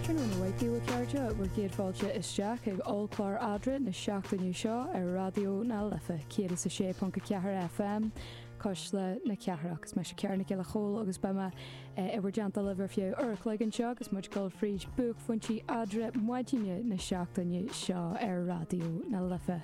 Tráthnóna maith a chairde, bhur gcéad fáilte isteach ag ollchlár Eadra na seachtaine seo ar Raidió na Life 106.4 FM cuisle na cathrach. Is mise Ciara Nic Giolla Chomhaill agus beidh mé in bhur dteannta libh ar feadh uair an chloig anseo agus muid ag gabháil fríd bhuaicphointí Eadra maidine na seachtaine seo ar Raidió na Life.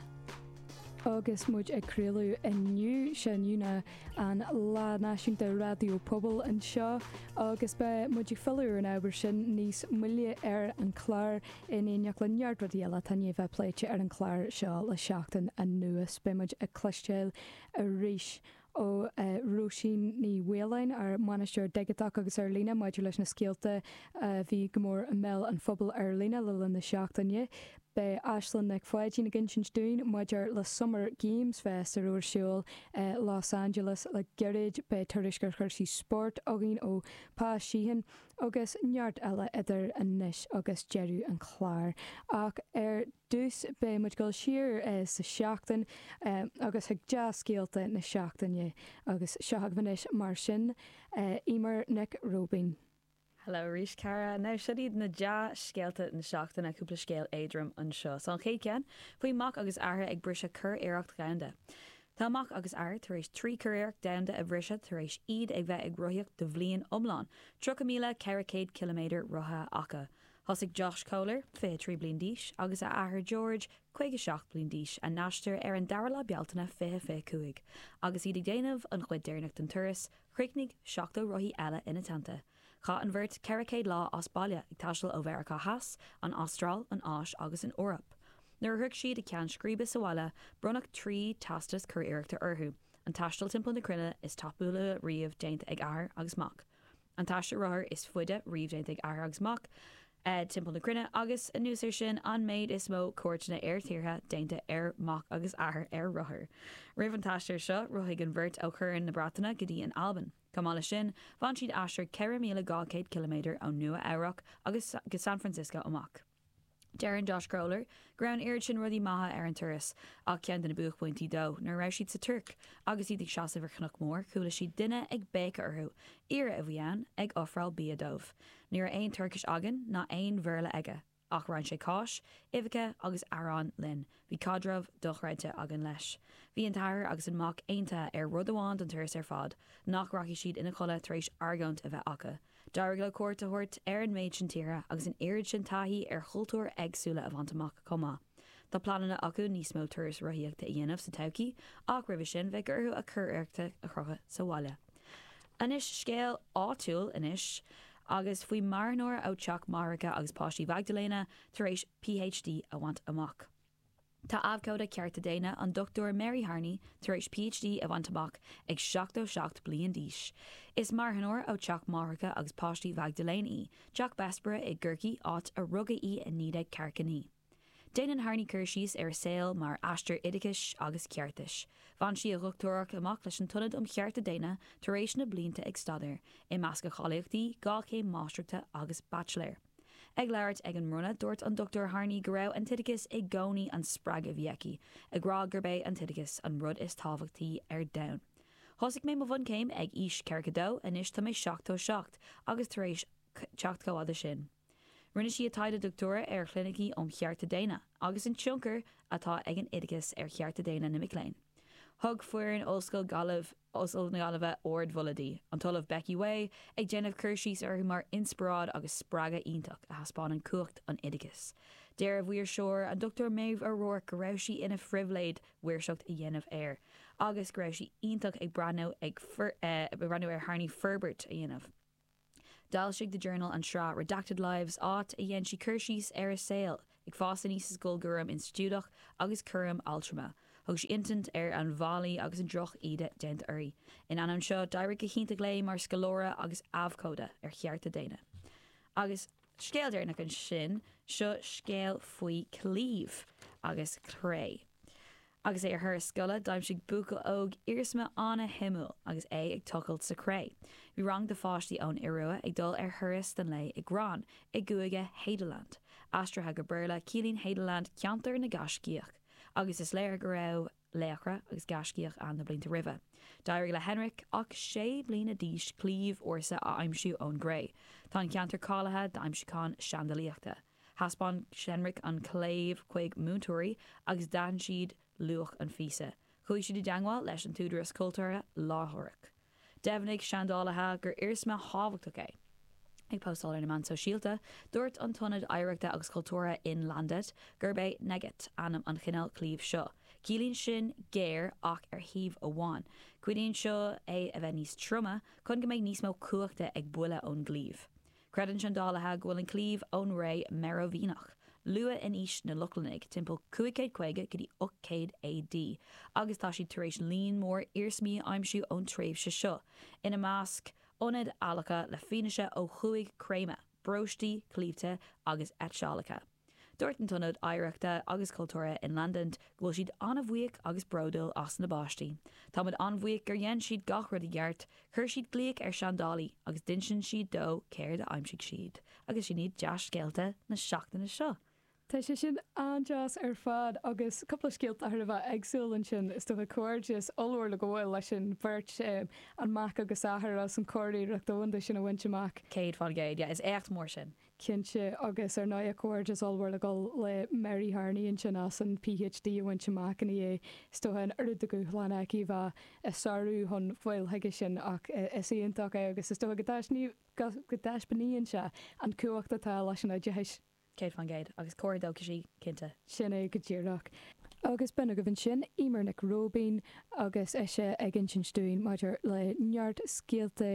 Agus muid ag craoladh inniu, sé inniu na. an Lá Náisiúnta Raidió Pobail anseo agus beidh muid ag filleadh ar an ábhar sin níos moille ar an chlár in éineacht le neart rudaí eile atá i ndiaidh a bheith pléite ar an chlár seo le seachtain anuas. Beidh muid ag cloisteáil arís ó Róisín Ní Mhaoláin, ár mbainisteoir digiteach agus ar líne, maidir leis na scéalta a bhí go mór i mbéal an phobail ar líne le linn na seachtaine. Beidh Aislinn Nic Pháidín ag insint dúinn maidir le Summer Games Fest a bhí ar siúl i Los Angeles le gairid, beidh tuairisc ar chúrsaí spóirt againn ó Pa Sheehan agus neart eile idir anois agus deireadh an chláir. Ach ar dtús beidh muid ag gabháil siar sa tseachtain agus chuig dea-scéalta na seachtaine. Agus seo agaibh anois mar sin Eimear Nic Róibín. Hello arís, Ciara. Now, seo iad na dea-scéalta na seachtaine, cúpla scéal éadrom anseo is ansin. Chéad cheann, faoi mac agus athair ag briseadh curiarracht dhomhanda. Tá mac agus athair tar éis trí curiarracht domhanda a bhriseadh tar éis iad ag bheith ag rothaíocht do bhliain iomlán, 30400 ciliméadar rothaithe acu. Thosaigh Josh Kohler, 23 bliain d'aois, agus a athair George, 57 bliain d'aois, a n-aistear ar an 2ú lá Bealtaine 2025, agus iad ag déanamh an chuid deireanach den turas, Chríochnaigh 70 rothaí eile ina dteannta. Chaith an bheirt 400 lá as baile, ag taisteal ó Mheiriceá Theas, an Astráil, an Áis agus an Eoraip. Nuair a shroich siad a gceann scríbe sa bhaile, bronnadh trí teastas curiarrachta orthu, an taisteal timpeall na cruinne is tapúla riamh déanta ag athair agus mac, an taisteal rothair is faide riamh déanta ag athair agus mac, timpeall na cruinne agus, anuas ar sin, an méid is mó cuairteanna ar thíortha déanta ar mac agus athair ar rothair. Roimh an t-aistear seo, rothaigh an bheirt ó Chorn na Breataine go dtí an Albain. Chomh maith le sin, bhain siad aistear 4,200 km ón Nua Eabhrac agus go San Francisco amach. Deireann Josh Kohler go raibh an oiread sin rudaí maithe ar an turas, ach ceann de na buaicphointí dó, nuair a raibh siad sa Tuirc agus iad ag seasamh ar chnoc mór, chuala siad duine ag béiceadh orthu. Aoire a bhí ann, ag ofráil bia dóibh. Ní raibh aon Tuircis againn, ná aon Bhéarla aige, ach roinn sé cáis, uibheacha agus arán linn. Bhí caidreamh dochreidte againn leis. Bhí an t-athair agus an mac aontaithe ar rud amháin don turas ar fad, nach rachaidh siad ina chodladh tar éis argóint a bheith acu. D'éirigh leo cuairt a thabhairt ar an méid sin tíortha agus an oiread sin taithí ar chultúir éagsúla a bhaint amach chomh maith. Tá pleananna acu níos mó turais rothaíochta a dhéanamh sa todhchaí, ach roimhe sin bheadh orthu a gcuid éachtaí a chrochadh sa bhaile. Anois scéal áitiúil anois, agus faoi marthanóir ó Teach Máithreacha agus Páistí Mhaigdiléana tar éis PhD a bhaint amach. Tá abhcóide cearta daonna, an Dr Mary Harney tar éis PhD a bhaint amach ag seachtó seacht bliain d'aois. Is marthanóir ó Teach Máithreacha agus Páistí Mhaigdiléana í, Teach Bessborough i gCorcaigh, áit a rugadh í i naoi déag ceathracha naoi. Déanann Harney cur síos ar a saol mar aistear oideachais agus ceartais. Bhain sí a dochtúireacht amach leis an tIonad um Chearta Daonna tar éis na blianta ag staidéar, i measc a cáilíochtaí, dhá chéim máistreachta agus baitsiléir. Ag labhairt ag an mbronnadh, dúirt an Dr Harney go raibh an t-oideachas i gcónaí an spreagadh a bhí aici, ag rá gurb é an t-oideachas an rud is tábhachtaí ar domhan. Thosaigh mé mo bhunchéim ag aois ceathracha dó, anois tá mé seachtó seacht, agus tar éis teacht chomh fada sin, Rinne sí a taighde dochtúra ar chlinicí um chearta daonna agus an tionchar atá ag an oideachas ar chearta daonna na mic léinn. Thug foireann Ollscoil na Gaillimhe ardmholadh di, an tOllamh Becky Whay ag déanamh cur síos uirthi mar inspioráid agus spreagadh iontach a thaispeánann cumhacht an oideachais. Deir a mhaoirseoir, an Dr Maeve O'Rourke go raibh sí ina phribhléid maoirseacht a dhéanamh air agus go raibh sí iontach ag breathnú ar Harney forbairt a dhéanamh. D'fhoilsigh The Journal an tsraith Redacted Lives, áit a dhéan sí cur síos ar a saol ag fás aníos i scoil, cúram institiúideach agus cúram altrama. Thug sí insint ar an bhfaillí agus an drochíde déanta uirthi. In ainneoin seo, d'éirigh go hiontach léi mar scoláire agus abhcóide ar chearta daonna. Agus. scéal deireanach ansin, seo scéal faoi claíomh agus cré. Agus é ar thuras scoile, d'aimsigh buachaill óg iarsma an-shuimiúil agus é ag tochailt sa chré. Bhí rang de pháistí ón Iorua ag dul ar thuras don lae i Gran i gCúige Hadeland. Aistrithe go Béarla, ciallaíonn Hadeland ceantar na ngaiscíoch, agus is léir go raibh. laochra agus gaiscíoch ann na blianta roimhe. D'éirigh le Henrik ach sé bliana d'aois claíomh ársa a aimsiú ón gcré. Tá an ceantar cáilithe d'aimsiúcháin seandálaíochta. Thaispeáin Henrik an claíomh chuig múinteoirí agus d'aithin siad luach an phíosa. Chuaigh siad i dteagmháil leis an tÚdarás Cultúrtha láithreach. Dheimhnigh seandálaithe gur iarsma tábhachtach é. Ag postáil ar na meáin shóisialta, dúirt an tIonad Oidhreachta agus Cultúrtha Innlandet gurb é enegget ainm an chineál claímh seo. Ciallaíonn sin géar ach ar thaobh amháin. Cuidíonn seo é a bheith níos troime chun go mbeidh níos mó cumhachta ag buille ón gclaíomh. Creideann seandálaithe go bhfuil an claíomh ón ré Merovingiach, luath in aois na Lochlannaigh, timpeall 550 go dtí 800 AD, agus tá siad tar éis líon mór iarsmaí a aimsiú ón tréimhse seo, ina measc ionaid adhlactha le fianaise ó chúig chréamadh, bróistí, claímhthe agus eitseálacha. Dúirt an tIonad Oidhreachta agus Cultúrtha in Llanddeint go bhfuil siad an-bhuíoch agus bródúil as na bpáistí. Táimid an-bhuíoch gur dhein siad gach rud i gceart, chuir siad glaoch ar seandálaí agus d'insíonn siad dó céard a d'aimsigh siad. Agus sin iad dea-scéalta na seachtaine seo! Tá sé sin an-deas ar fad, agus cúpla scéalta thar a bheith éagsúil ansin, is dócha. Comhghairdeas ollmhór le gabháil leis an bheirt, an mac agus athair, as an churiarracht dhomhanda sin a bhaint amach. Céad faoin gcéad, yeah, is éacht mór sin. cinnte, agus ar ndóigh comhghairdeas ollmhór le gabháil le Mary Harney ansin as an PhD a bhaint amach i ndiaidh is dócha an oiread de dhúshlán aici bheith á sárú chun fáil chuige sin ach is iontach é agus is dócha go dtaispeánann sé an chumhacht atá leis an oideachas. Céad faoin gcéad. Agus cóir dócha sí, cinnte. Sin é go díreach. Agus b'in agaibh ansin Eimear Nic Róibín agus ise ag insint dúinn maidir le neart scéalta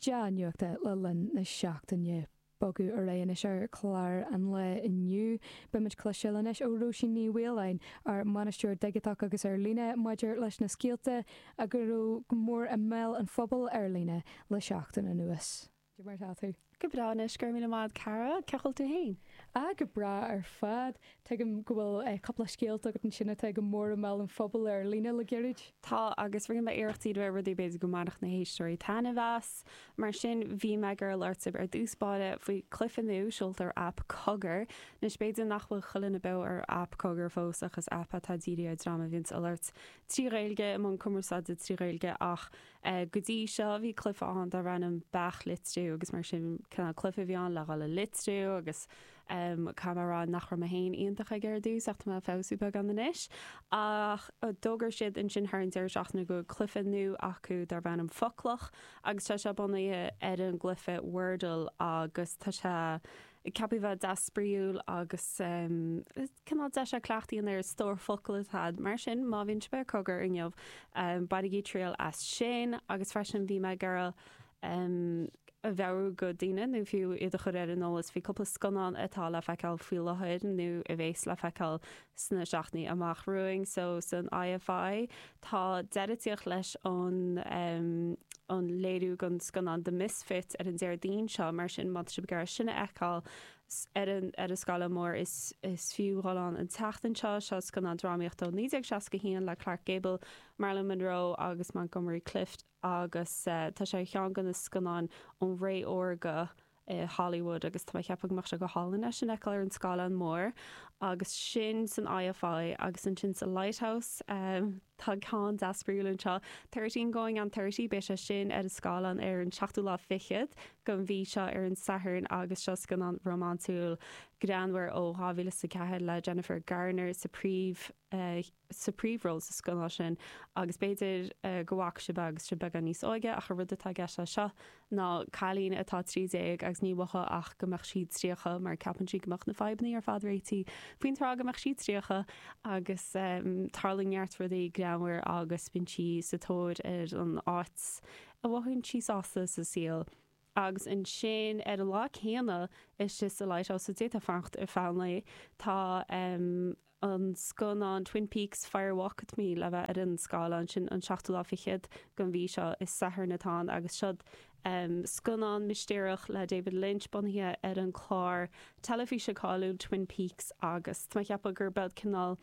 dea-nuachta le linn na seachtaine. Ag bogadh ar aghaidh anois ar chlár an lae inniu. Beimid ag cloisteáil anois ó Róisín Ní Mhaoláin, ár mBainisteoir Digiteach agus Ar Líne, maidir leis na scéalta a go raibh go mór i mbéal an phobail ar líne le seachtain anuas. Caidé mar atá tú? Go breá anois, go raibh míle maith a'd cara, cén chaoi a bhfuil tú fhéin? Ah, go breá ar fad. Tuigim go bhfuil cúpla scéalta agat ansin atá go mór i mbéal an phobail ar líne le gairid. Tá, agus rinne mé iarracht díriú ar rudaí a b'fhéidir go mbainfeadh na héisteoirí taitneamh as. Mar sin, bhí mé ag iarraidh labhairt ar dtús báire faoi cluife nua seolta ar aip Cogar. Anois, b'fhéidir nach bhfuil chuile dhuine beo ar aip Cogar fós, ach is aip atá dírithe ar dream a bhíonns ag labhairt trí Ghaeilge, i mbun cumarsáide trí Ghaeilge, ach go dtí seo, bhí cluife ann darb ainm Beach Litriú, agus mar sin, cineál cluife a bhí ann le dhul ag litriú, agus. Caithfidh mé a rá nach raibh mé féin iontach aige ar dtús, ach tá mé ag feabhsú beagán anois. Ach d'fhógair siad ansin thar an deireadh seachtaine go bhfuil cluiche nua acu darb ainm Foclach, agus tá sé bunaithe ar an gcluiche Wordle, agus tá sé ceaptha a bheith deas spraíúil agus. Cineál deis é cleachtadh a dhéanamh ar an stór focal atá a'd, mar sin má bhíonn sibh ar Cogar inniu, bainigí triail as sin, agus freisin bhí mé ag iarraidh a mheabhrú go daoine, nó fiú iad a chur ar an eolas faoi cúpla scannán atá le feiceáil faoi láthair, nó a bhéas le feiceáil sna seachtainí amach romhainn. So san IFI tá deireadh ag tíocht leis an an léiriú den scannán The Misfits ar an Déardaoin seo, mar sin má tá sibh ag iarraidh sin a fheiceáil, ar an scáileán mór. Is fiú dhul ann an tseachtain seo. Seo scannán drámaíochta ó 1961 le Clark Gable, Marilyn Monroe agus Montgomery Clift agus tá sé ar cheann de na scannáin ón ré órga i Hollywood agus tá mé ag ceapadh go mbeadh sé go hálainn é sin a fheiceáil ar an scáileán mór agus sin san IFI agus ansin sa Lighthouse. Tá ceann deas spraíúil anseo. Thirteen Going on Thirty, beidh sé sin ar an scáileán ar an seachtú lá fichead den mhí seo, ar an Satharn, agus seo scannán rómánsúil greannmhar ó 2004 le Jennifer Garner sa bpríomh, sa bpríomhról sa scannán sin, agus b'fhéidir go bhfaca sibh é agus sibh beagán níos óige, ach an rud atá i gceist leis seo ná cailín atá trí déag agus ní maith léi ach go mbeadh sí tríocha mar ceapann sí go mbeadh na fadhbannaí ar fad réitithe faoin tráth go mbeadh sí tríocha agus tarlaíonn neart rudaí greannmhar agus bíonn sí sa tóir ar an áit a mhothaíonn sí sásta sa saol agus ansin ar an lá céanna istigh sa Lighthouse so d'fhéadfá fanacht ar feadh an lae tá. an scannán Twin Peaks, Fire Walk With Me le bheith ar an scáileán. Sin an seachtú lá fichead den mhí seo, is Satharn atá ann, agus seod scannán mistéireach le David Lynch bunaithe ar an gclár teilifíse cáiliúil Twin Peaks. Agus tá mé ag ceapadh gurb ea cineál,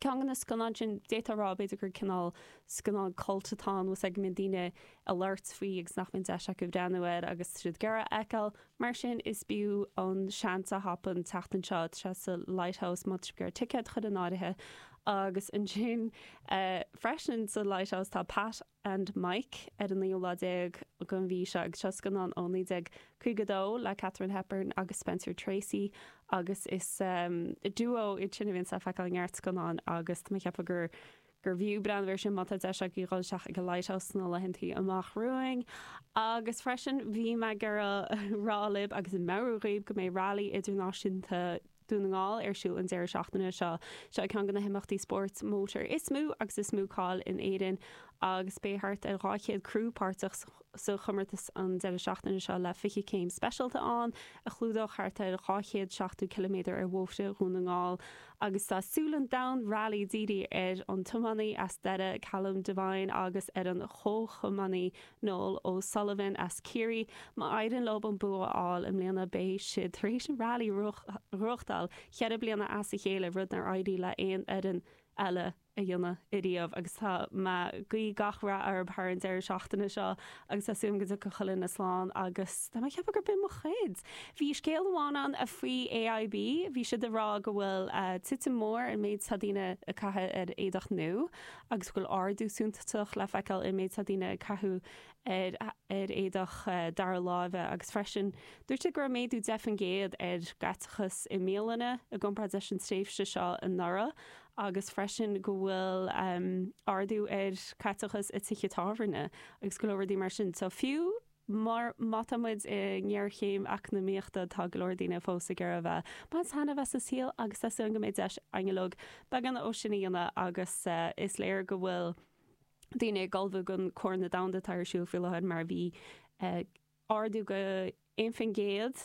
ceann de na scannáin sin, d'fhéadfá a rá b'fhéidir gur cineál scannán cult atá ann, is go mbíonn daoine ag labhairt faoi agus nach mbíonn deis acu breathnú air agus iad go léir a fheiceáil. Mar sin, is b'fhiú an seans a thapú an tseachtain seo sa Lighthouse má tá sibh ag iarraidh ticéad a chur in áirithe agus ansin freisin sa Lighthouse tá Pat and Mike ar an naoú lá déag den mhí seo agus seo scannán ó 1952 le Katharine Hepburn agus Spencer Tracy agus is duo iad sin a bhíonn le feiceáil i neart scannán agus tá mé ag ceapadh gur gur bhfiú breathnú ar sin má tá deis agaibh dhul isteach ag an Lighthouse sna laethanta amach romhainn. Agus freisin, bhí mé ag rá libh agus ag meabhrú dhaoibh go mbeidh Railí Idirnáisiúnta Dhún na nGall ar siúl an deireadh seachtaine seo. Seo ceann de na himeachtaí spóirt mótair is mó agus is mó cáil in Éirinn agus beidh thart ar 200 criú páirteach sa chomórtas an deireadh seachtaine seo le 20 céim speisialta ann a chlúdóidh thart ar 270 ciliméadar ar bhóithre Dhún na nGall. agus tá súile an domhain railí dírithe ar an tiománaí as Doire Callum Devine agus ar an chomhthiománaí Noel O'Sullivan as Ciarraí. Má éiríonn leo an bua a fháil i mbliana beidh siad tar éis an Railí a ghnóthachtáil cheithre bliana as a chéile, rud nár éirigh le haon fhoireann eile a dhéanamh ariamh agus tá mé ag guí gach rath orthub thar an deireadh seachtaine seo agus tá súil agam go dtiocfaidh chuile dhuine slán agus tá mé ag ceapadh gur b'in mo chuid! Bhí scéal amháin ann a faoi AIB, bhí siad ag rá go bhfuil titim mór sa méid atá daoine ag caitheamh ar éadach nua agus go bhfuil ardú suntasach le feiceáil sa méid atá daoine ag caitheamh ar ar éadach dara láimhe agus freisin dúirt siad go raibh méadú deich faoin gcéad ar chaiteachas i mbialanna i gcomparáid leis an tréimhse seo anuraidh agus freisin go bhfuil ardú ar chaiteachas i tithe tábhairne agus go leor rudaí mar sin. So fiú má tá muid i ngéarchéim eacnamaíochta tá go leor daoine fós ag iarraidh a bheith ag baint taitneamh as an saol agus tá súil go mbeidh deis ag an eolas beagán é sin a dhéanamh agus is léir go bhfuil daoine ag ullmhú don Chorn Domhanda atá ar siúl faoi láthair mar a bhí ardú de 1 faoin gcéad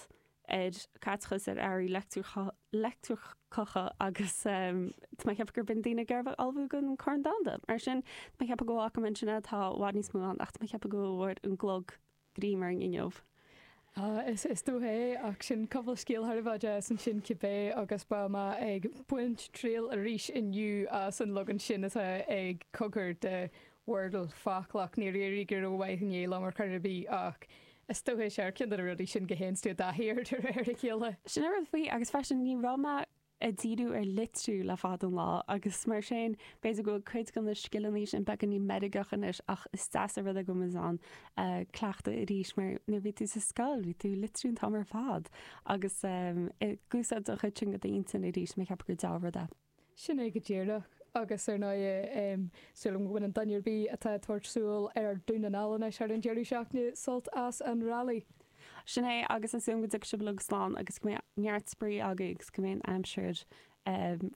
ar chaiteachas ar earraí leictreacha agus tá mé ag ceapadh gurb in daoine ag iarraidh a bheith ag ullmhú don Chorn Domhanda. Mar sin, tá mé ag ceapadh go bhfaca mé ansin é, tá i bhfad níos mó ann ach tá mé ag ceapadh go bhfuair an clog greim orainn inniu. Is dócha é, ach sin cúpla scéal thar a bheith deas ansin cibé agus beidh mé ag baint triail arís inniu as an leagan sin atá ag Cogar de Wordle, Foclach, ach níor éirigh go rómhaith inné liom ar chor ar bith, ach is dócha is é ceann de na rudaí sin go théanns tú i dtaithí air de réir a chéile. Sin an rud faoi, agus freisin ní raibh mé ag díriú ar litriú le fada an lá, agus mar sin b'fhéidir go bhfuil cuid de na scileanna sin beagáinín meirgeach anois, ach is deas an rud é go bhfuilimid in ann cleachtadh arís, mar nuair a bhí tú sa scoil bhí tú ag litriú an t-am ar fad, agus ag úsáid an chuid sin de d'intinn arís, mar cheapaim gur dea-rud é. Sin é go díreach. Agus ar ndóigh, tá súil agam go mbainfidh duine ar bith atá ag tabhairt aghaidh ar Dún na nGall anois thar an deireadh seachtaine sult as an rally. Sin é, agus tá súil agam go dtiocfaidh sibh uilig slán agus go mbeidh neart spraoi agaibh agus go mbeidh an aimsir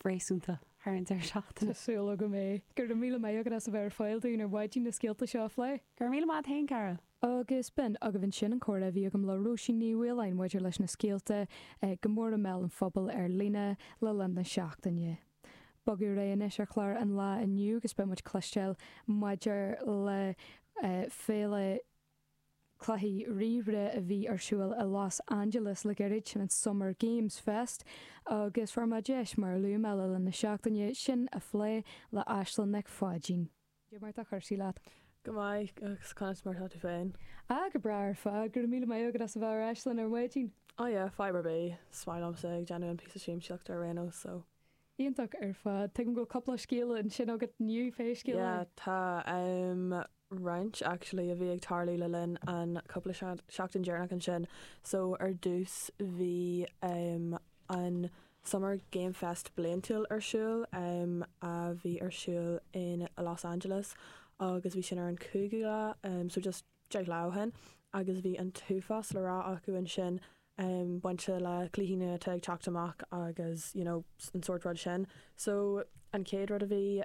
réasúnta thar an deireadh seachtaine. Tá súil agam go mbeidh. Go raibh míle maith agat as a bheith ar fáil dúinn ar maidin na scéalta seo a phlé. Go raibh míle maith a'd fhéin, a chroí. Agus b'in agaibh ansin an comhrá a bhí agam le Róisín Ní Mhaoláin maidir leis na scéalta go mór i mbéal an phobail ar líne le linn na seachtaine. Bogadh ar aghaidh anois ar chlár an lae inniu agus beidh muid ag cloisteáil maidir le Féile Cluichí Ríomhaire a bhí ar siúl i Los Angeles le gairid, sin an Summer Games Fest, agus fuair mé deis, mar a luaigh mé le linn na seachtaine, sin a phlé le Aislinn Nic Pháidín. Cad é mar tá cúrsaí leat. Go maith, agus conas mar atá tú féin? Ah, go breá ar fad, go raibh míle maith agat as a bheith ar ais linn ar maidin. Ah yeah, fadhb ar bith. 's maith liomsa ag déanamh na píosaí siamsaíochta ar aon nós, so. Iontach ar fad. Tuigim go bhfuil cúpla scéal ansin agat inniu, pé scéal é. Yeah, tá, em, roinnt, actually, a bhí ag tarlú le linn an chúpla seachtain dheireanach ansin. So, ar dtús, bhí, em. an Summer Game Fest bliantúil ar siúl, a bhí ar siúl in Los Angeles agus bhí sin ar an 5ú lá, so just deich lá ó shin, agus bhí an t-uafás le rá acu ansin, bainte le cluichí nua atá ag teacht amach agus you know an sórt rud sin. So an chéad rud a bhí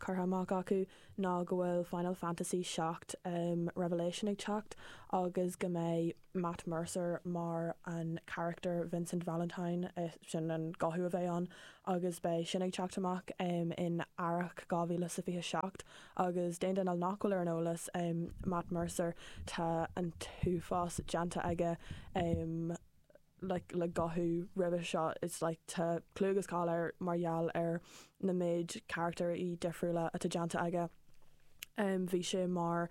curtha amach acu ná go bhfuil Final Fantasy 7 Revelation ag teacht agus go mbeidh. Matt Mercer mar an carachtar Vincent Valentine, sin an guthú a bheidh ann, agus beidh sin ag teacht amach in earrach 2027. Agus d'aon duine nach bhfuil ar an eolas, Matt Mercer, tá an t-uafás déanta aige like le guthú roimhe seo, it's like tá clú agus cáil air mar gheall ar an méid carachtair dhifriúla atá déanta aige. Bhí sé mar.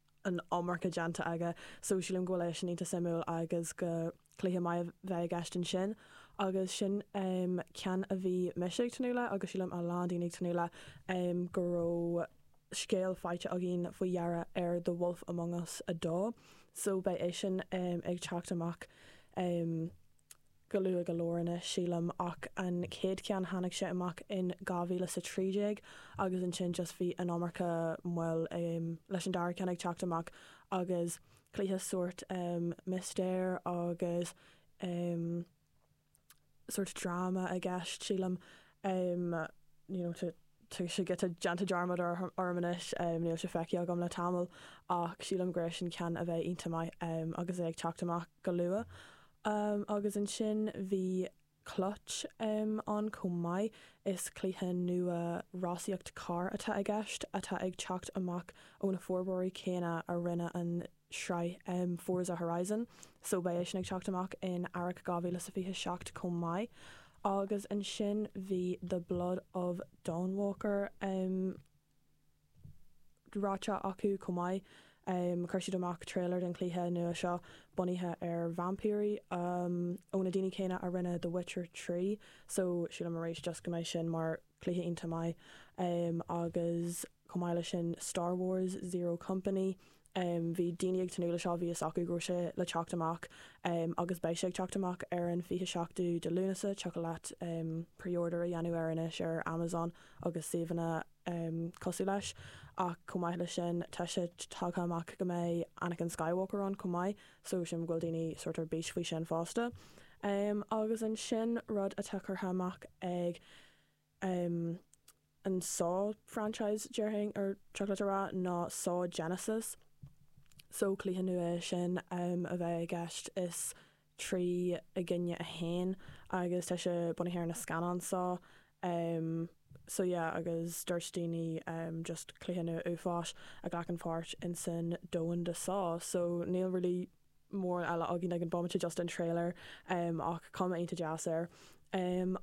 an iomarca déanta aige so sílim go bhfuil sé sin iontach suimiúil agus go cluiche maith a bheidh i gceist ansin agus sin ceann a bhí mise ag tnúth leis agus sílim a lán daoine ag tnúth leis go raibh scéal faighte againn faoi dheireadh ar The Wolf Among Us 2 so beidh sé sin ag teacht amach go luath go leor anois, sílim, ach an chéad cheann tháinig sé amach in 2013 agus ansin just bhí an iomarca moill leis an dara ceann ag teacht amach agus cluiche sórt mistéir agus sórt dráma i gceist, sílim. em you know tá sé giota déanta dearmad orm orm anois em níl sé feicthe agam le tamall ach sílim gur é sin ceann a bheidh iontach maith em agus é ag teacht amach go luath em agus ansin bhí clutch em ann chomh maith is cluiche nua rásaíochta carr atá i gceist atá ag teacht amach ó na forbróirí céanna a rinne an tsraith Forza Horizon so beidh sé sin ag teacht amach in earrach 2027 chomh maith. Agus ansin bhí The Blood of Dawnwalker ráite acu chomh maith. Chuir siad amach trailer den chluiche nua seo bunaithe ar vaimpírí ó na daoine céanna a rinne The Witcher 3 so sílim arís just go mbeidh sin mar chluiche iontach maith. Agus Chomh maith leis sin, Star Wars, Zero Company, bhí daoine ag tnúth leis seo, bhí fhios acu go raibh sé le teacht amach agus beidh sé ag teacht amach ar an 27ú de Lúnasa, thiocfadh leat preorder a dhéanamh air anois ar Amazon agus suíomhanna cosúil leis, ach chomh maith leis sin tá sé tagtha amach go mbeidh Anakin Skywalker ann chomh maith, so sílim go bhfuil daoine sórt ar bís faoi sin fosta. Agus ansin rud atá curtha amach ag. an Saw franchise déarfainn go dtiocfadh leat a rá ná saw genesis so cluiche nua é sin em a bheidh i gceist is trí i gcoinne a haon agus tá sé bunaithe ar na scannáin Saw em so yeah agus dúirt daoine em just cluiche nua uafáis a ghlacann páirt insan domhan de saw so níl really mórán eile againn ag an bomaite just an trailer ach cuma iontach deas air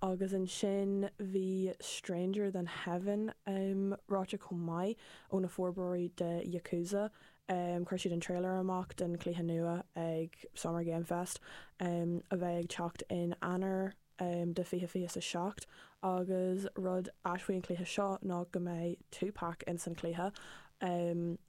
agus ansin bhí Stranger Than Heaven ráite chomh maith ó na forbróirí de Yakuza chuir siad an trailer amach den cluiche nua ag Summer Game Fest a bheidh ag teacht in Eanáir de 2027 agus rud ait faoi an cluiche seo ná go mbeidh Tupac in san cluiche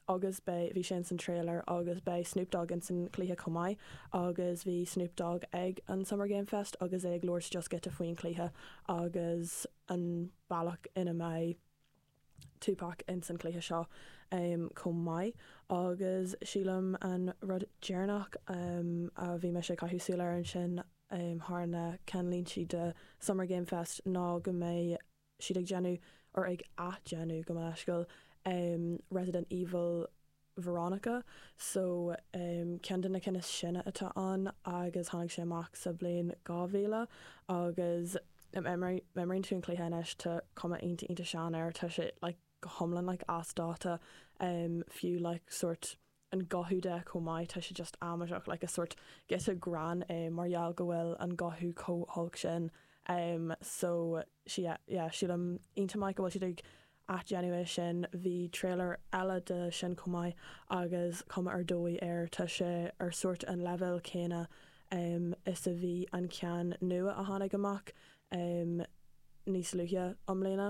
agus beidh, bhí sé ins an trailer agus beidh Snoop Dogg ins an cluiche chomh maith agus bhí Snoop Dogg ag an Summer Game Fest agus é ag labhairt just giota faoin chluiche agus an bealach ina mbeidh Tupac ins an chluiche seo chomh maith agus sílim an rud deireanach a bhí mise ag caitheamh súil air ansin thar na ceannlíntí de Summer Game Fest ná go mbeidh siad ag déanamh, or ag athdhéanamh gabh mo leithscéal, Resident Evil Veronica, so ceann de na cinn is sine atá ann agus tháinig sé amach sa bhliain 2000 agus má imríonn tú an cluiche anois, tá cuma iontach iontach sean air, tá sé like go hiomlán like as dáta, fiú like sórt an guthú de chomh maith, tá sé just amaideach, like is sórt giota grinn é mar gheall go bhfuil an guthú chomh holc sin. Em so sea, yeah, sílim iontach maith go bhfuil siad ag athdhéanamh é sin. Bhí trailer eile de sin chomh maith agus cuma ar dóigh air, tá sé ar sórt an leibhéal céanna em is a bhí an ceann nua a tháinig amach em níos luaithe i mbliana.